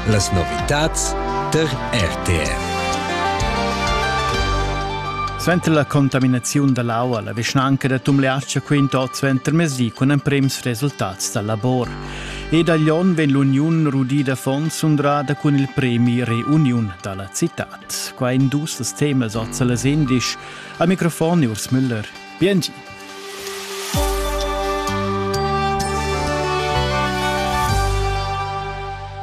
Las novitads tar RTR. Suenter la contaminaziun da l'aua la vischnanca da Tumleatscha quinta oz ventermesdi cun emprims resultats dal labor. Ed a Lyon vegn l'uniun rudida fonds undrada cun il premi Reuniun da la citad. Qua in dus temas oz a las indisch. A microfon Urs Müller. Biengi.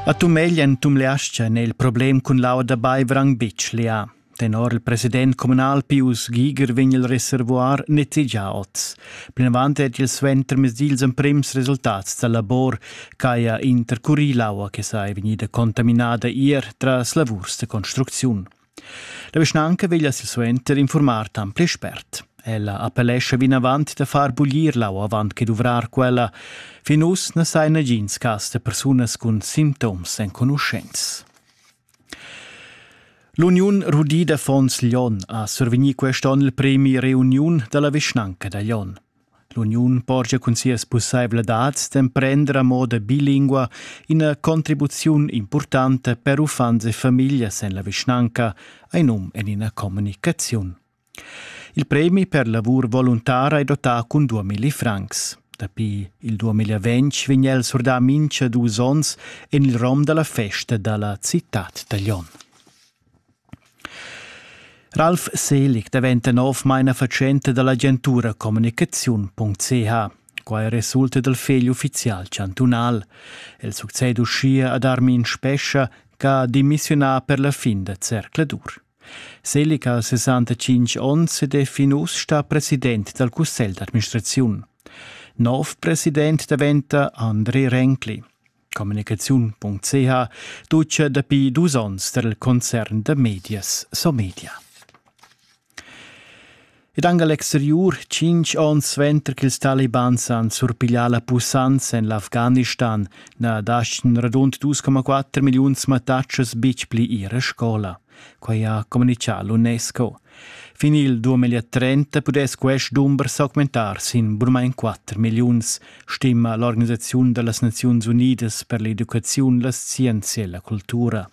A Tumeglien tumleascha nel problem cun lauda Baivrang Bitsch lià. Tenor il president communal Pius Giger vegn il reservoir nettegià oz. Plinavant è il suentermezdi ils emprims resultats da labor ch'haja intercurì l'aua che sa è vegnida contaminada ier tras lavurs de construcziun. La vischnanca veglia silsuenter informar tant pli spert. Ella appellescha vinavant da far buglir lau avant che duvrar quella. Fin uss na sai nagins cas da persunas cun sintoms enconuschents. L'Uniun rudida Fons Lyon ha survegnì quest onn il premi Reuniun da la vischnanca da Lyon. L'uniun porscha cun sias pussaivladads d'emprender a moda bilingua ina contribuziun impurtanta per uffants e famiglias en la vischnanca, ein num en ina communicaziun. Il premi per lavur voluntara è dotà cun 2000 francs. Dapi il 2020 vegn el surdà mincha dus onns en il rom da la festa da la citad da Lyon. Ralf Selig daventa novmain fatschenta da l'agentura communicaziun.ch. Quai resulta dal fegl uffizial chantunal. El succeda uschia ad Armin Spescha ch'ha demissiunà per la fin da zercladur. Selig ha 65 onns ed è fin uss stà president dal cussegl d'administraziun. Nov president daventa Andri Renkli. communicaziun.ch duce dapi dus onns der concern da medias Somedia. Ed anche l'exterior, cinque onns suenter che ils Taliban han surpiglià la pussanza en l'Afghanistan, na lasciano radund 2,4 milioni mattatschas betg pli ir a scola. Quei ha communicà l'UNESCO. Fin il 2030 pudess quest dumber s'augmentar sin burmain 4 milliuns, stima l'Organisaziun da las Naziuns Unidas per l'educaziun, la scienzia e la cultura.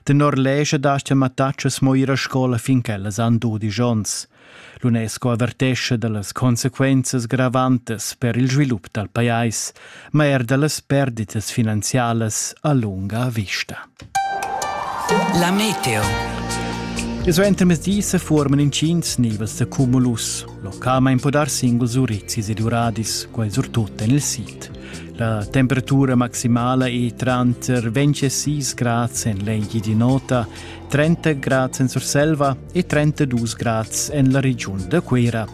Tenor lescha dastia mattatschas mo ir a scola fin ch'ellas han dudisch onns. L'UNESCO avertescha da las consequenzas gravantas per il svilup dal pajais, ma er da las perditas finanzialas a lunga vista. La meteo. E suenter mezdi se forman incins nivas da cumulus. Localmain può dar singuls urizzis ed uradis, quai surtut en il sid. La temperatura maximala è tranter 26 grads en l'engi di nota 30 grads en Surselva e 32 grads en la regiun da Cuira.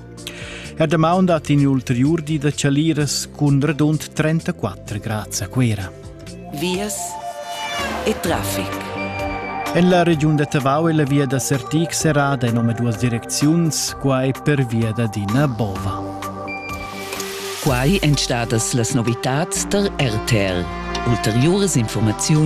Er damaun dat in ulteriur di da chaliras cun radund 34 grads a Cuira. Vias e traffic. En la regiun da Tavau è la via da Sertig serrada en omaduas direcziuns, quai per via da Dina Bova. Quai èn stadas las novitads tar RTL. Ulteriuras informaziun